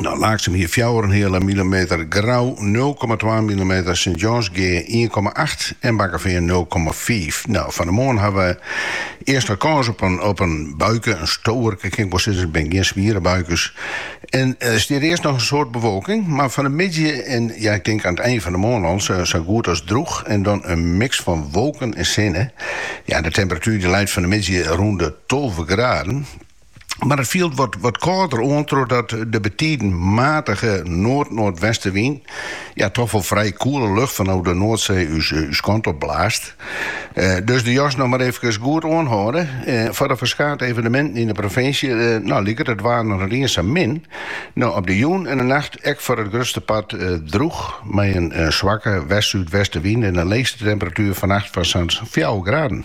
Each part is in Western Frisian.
Nou, Laaksum hie fjouwerenheale millimeter, Grou 0,2 millimeter, Sint Jansgea 1,8 en Bakkefean 0,5. Nou, fan 'e moarn hawwe we earst wat kâns op in, op in buike, in stoarke kin ik wol sizze, binne gjin swiere buikes. En uh, eh, stiet earst noch in soad bewolking, mar fan 'e middei en ja, ik tink oan it ein fan 'e moarn al, sa, sa goed as drûch. En dan in miks fan wolken en sinne. Ja, de temperatuur dy leit fan 'e middei rûn de 12 graden. Mar it fielt wat, wat kâlder oan trochdat de betiden matige noard-noardwestenwyn ja, toch wol frij koele lucht fanôf de Noardsee ús, ús kant op blaast. Eh, dus de jas noch mar eefkes goed oanhâlde. Eh, foar de ferskate eveneminten yn de provinsje, eh, no liket it waar no net iens sa min. No op de jûn en de nacht ek foar it grutste part eh, drûch mei in eh, swakke west-súdwestenwyn en de leechste temperatuer fannacht fan sa'n fjouwer graden.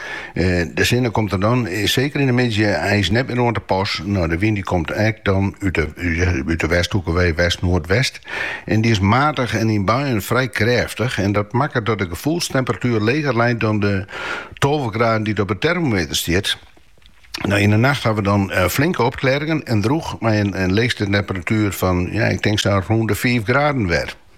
De sinne komt der dan, seker yn de middei, eins net mear oan te pas. No, de wyn dy komt ek dan út de westhoeke wei, west-noardwest, en dy is matich en yn buien frij krêftich en dat makket dat de gefoelstemperatuer leger leit dan de tolve graden dy't op 'e termometer stiet. No, yn 'e nacht hawwe we dan flinke opklearringen en drûch mei in leechste temperatuer fan, ja, ik tink sa rûn de fiif graden wer.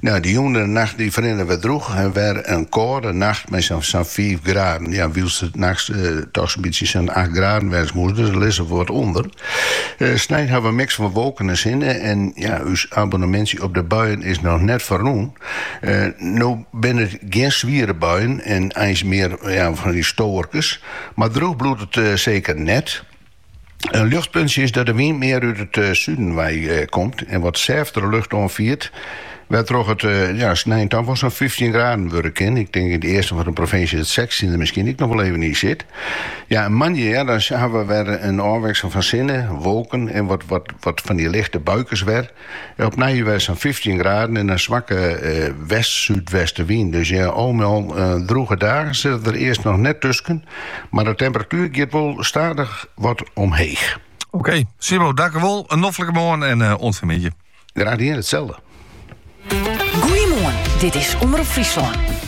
Nou, de jûn en de nacht dy ferrinne wer drûch en wer in kâlde nacht mei sa'n fiif graden. Ja, wylst it nachts dochs in bytsje sa'n acht graden wêze moast, dus der lizze we wat ûnder. Snein hawwe we in miks fan wolken en sinne en ja, ús abonemintsje op de buien is noch net ferrûn. No binne it gjin swiere buien en eins mear fan dy stoarkes, mar drûch bliuwt it seker net. In ljochtpuntsje is dat de wyn mear út it suden wei komt en wat sêftere lucht oanfiert, wêrtroch it ja, snein ta wol sa'n fyftjin graden wurde kin. Ik tink yn it easten fan de provinsje dat sechstjin der miskien ek noch wol even yn sit. Ja, en moandei ja, dan hawwe we wer in ôfwikseling fan sinne, wolken en wat fan dy lichte buikes wer. Opnij wer sa'n fyftjin graden en in swakke west-súdwestenwyn. Dus ja, al mei al drûge dagen sitte der earst noch net tusken, mar de temperatuer giet wol stadich wat omheech. Oké, Simon, dankewol. In noflike moarn en oant fan 'e middei. Graach dien, itselde. Goeiemoarn, dit is Omrop Fryslân.